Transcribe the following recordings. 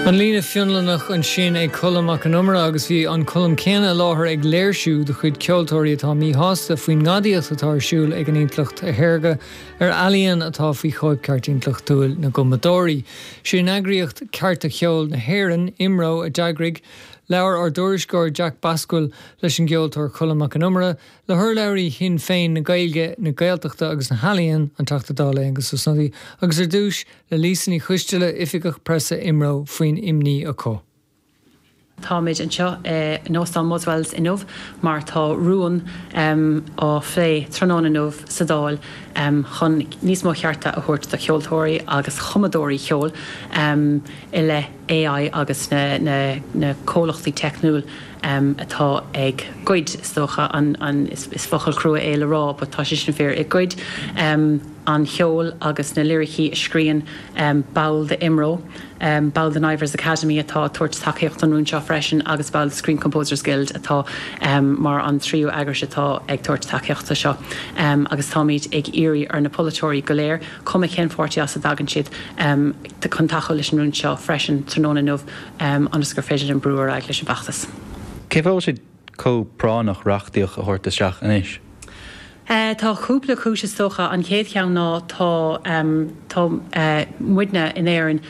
An Líne Fhionlannach ansin ag Colm Mac an Iomaire agus bhí an Colm céanna i láthair ag léirsiú de chuid ceoltóirí atá míshásta faoin ngadaíocht atá ar siúl ag an intleacht shaorga ar ealaíon atá faoi chóipcheart intleachtúil na gcumadóirí. Sé an eagraíocht Cearta Cheoil na hÉireann, IMRO, a d'eagraigh. Labhair ár dtuairisceoir Jack Bascaill leis an gceoltóir Colm Mac an Iomaire, le hurlabhraí Shinn Féin na Gaeilge, na Gaeltachta agus na hEalaíon, an Teachta Dála Aengus Ó Snodaigh agus ar dtúis, le Lisa Ní Choisteala, Oifigeach Preasa IMRO, faoin imní acu. Táimid anseo in óstán Buswells inniu mar tá rún á phlé tráthnóna inniu sa Dáil chun níos mó chearta a thabhairt do cheoltóirí agus chumadóirí ceoil i leith AI agus na comhlachtaí teicniúil atá ag goid, is dócha, is focal crua é le rá but tá sé sin fíor, ag goid. an cheoil agus na liricí a scríonn ball de IMRO, ball den Ivors Academy atá ag tabhairt tacaíocht don rún seo freisin agus ball de Screen Composers Guild atá mar an tríú eagrais atá ag tabhairt tacaíocht do seo agus táimid ag iarraidh ar na polaiteoirí go léir, cuma cén pháirtí as a dtagann siad, chun tacú leis an rún seo freisin tráthnóna inniu ionas gur féidir linne brú ar aghaidh leis an bhfeachtas. Cén fáth go bhfuil sé? chomh práinneach reachtaíocht a thabhairt isteach anois? Tá cúpla cúis is dócha. An chéad cheann ná tá muidne in Éirinn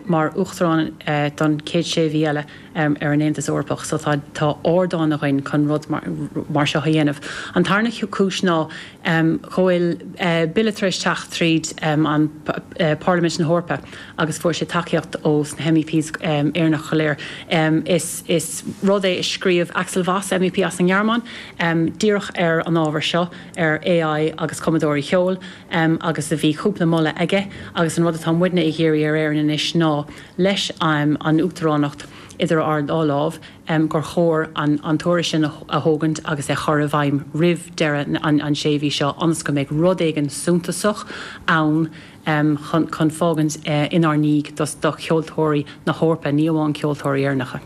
mar Uachtarán don chéad sé mhí eile ar an Aontas Eorpach so tá ardán againn chun rud mar seo a dhéanamh. An tarna cúis ná go bhfuil bille tar éis teacht tríd an Pharlaimint na hEorpa agus fuair sé tacaíocht ó sna MEPs Éireannach go léir. Is rud é a scríobh Axel Voss, MEP as an nGearmáin, díreach ar an ábhar seo, ar AI agus cumadóirí cheoil, agus a bhí cúpla moladh aige, agus an rud atá muidne ag iarraidh ar Éirinn anois ná, leis an uachtaránacht idir ár dá lámh, gur chóir an tuairisc sin a thógaint agus a chur i bhfeidhm roimh deireadh an sé mhí seo ionas go mbeidh rud éigin suntasach ann chun fágaint inár ndiaidh do cheoltóirí na hEorpa, ní amháin ceoltóirí Éireannacha.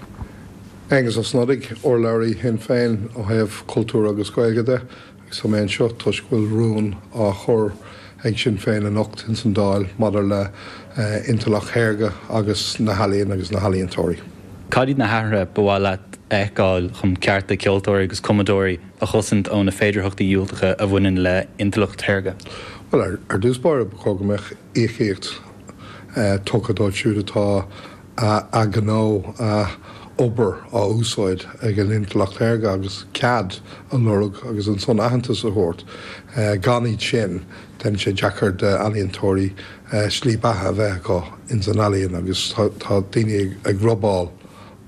Aengus Ó Snodaigh, urlabhraí Shinn Féin ó thaobh cultúr agus Gaeilge de. Tá mé anseo toisc go bhfuil rún á chur ag Sinn Féin anocht ins an Dáil maidir le intleacht shaorga agus na healaíon agus na healaíontóirí. Cad iad na hathruithe ba mhaith leat a fheiceáil chun cearta ceoltóirí agus cumadóirí a chosaint ó na féidearthachtaí dhiúltacha a bhaineann le intleacht shaorga? Bhuel, ar dtús báire ba chóir go mbeadh íocaíocht tugtha dóibh siúd atá. a ghnó, a obair á úsáid ag an intleacht shaorga agus cead a lorg agus ansan aitheantas a thabhairt. Gan iad sin, déanann sé deacair d'ealaíontóirí slí beatha a bheith acu ins an ealaíon agus tá daoine ag robáil